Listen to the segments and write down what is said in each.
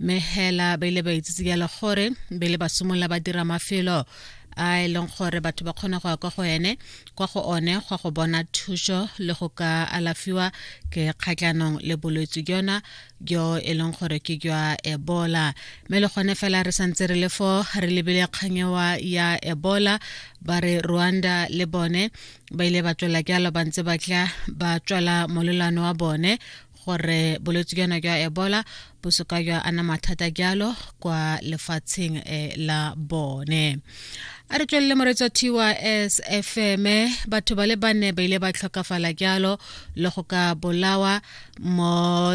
mme hela ba ile ba itsitse jalo gore be le ba simolola ba dira mafelo a e leng gore batho ba kgona go ya kwa go ene kwa go one gwa go bona thuso le go ka alafiwa ke kgatlhanong le bolwetse jona jo e leng gore ke jwa ebola mme le gone fela re santse re le fo re lebile kganyewa ya ebola ba re rwanda le bone ba ile ba tswela jalo ba ntse ba tla ba tswela molelwane wa bone gore bolwetse jana jwa ebola bo soka jwa ana mathata jalo kwa lefatsheng eh, la bone a re tswelele moretsi wa tys fm batho ba le bane ba ile ba tlhokafala jalo le go ka bolawa mo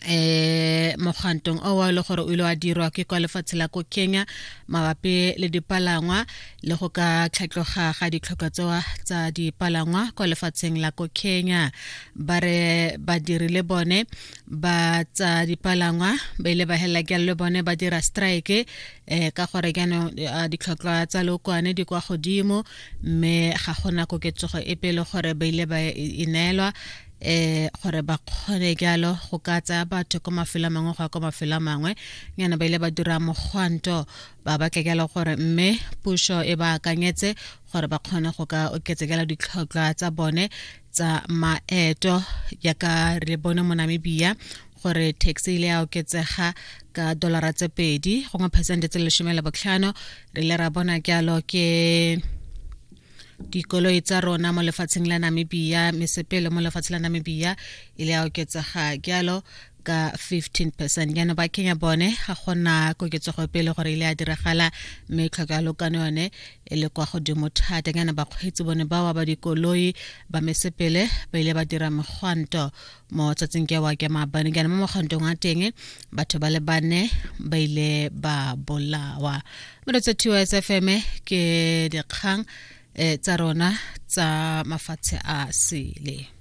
eh mogantong o wa le gore o ile wa dirwa ke kwa lefatshe la ko kenya mabapi le dipalangwa le go ka tlhatloga ga ditlhokwa tsewa tsa dipalangwa kwa lefatsheng la ko kenya ba re badiri le bone ba tsa dipalangwa ba ile ba helela ke le bone ba dira strike um ka gore jaanong eh, ditlhotlhwa tsa lookwane di kwa godimo mme ga gona koketsogo e pele gore ba ile ba e neelwa eh gore ba kgone jalo go ka tsaya batho ko mafelo a mangwe go ya ko mafelo a mangwe nyana ba ile ba dira mogwanto ba batlegela gore mme puso e ba akanyetse gore ba kgone go ka oketsekela ditlhotlhwa tsa bone tsa maeto yaka re bone mo namibia gore taxi ile ya oketsega ka dolara tse pedi gongwe phesente tse lesome le botlhano re ile ra bona jalo ke dikoloi tsa rona mo lefatsheng la namibia mesepele mo lefatsheng la namibia ile ya oketsega jalo ka 15 percent jaanong ba kenya bone ga gona koketsego pele gore ile a diragala mme tlhoko ya lokano yone e le kwa godimo thata jaana bakgweetsi bone bawa ba dikoloi ba mesepele ba ile ba dira megwanto mo tsatsing ke wa ke maabane jaana mo mogwantong wa teng batho ba le bane ba ile ba bolawa mo lo tsa s f m ke dikgang eh, tsa rona tsa mafatshe a sele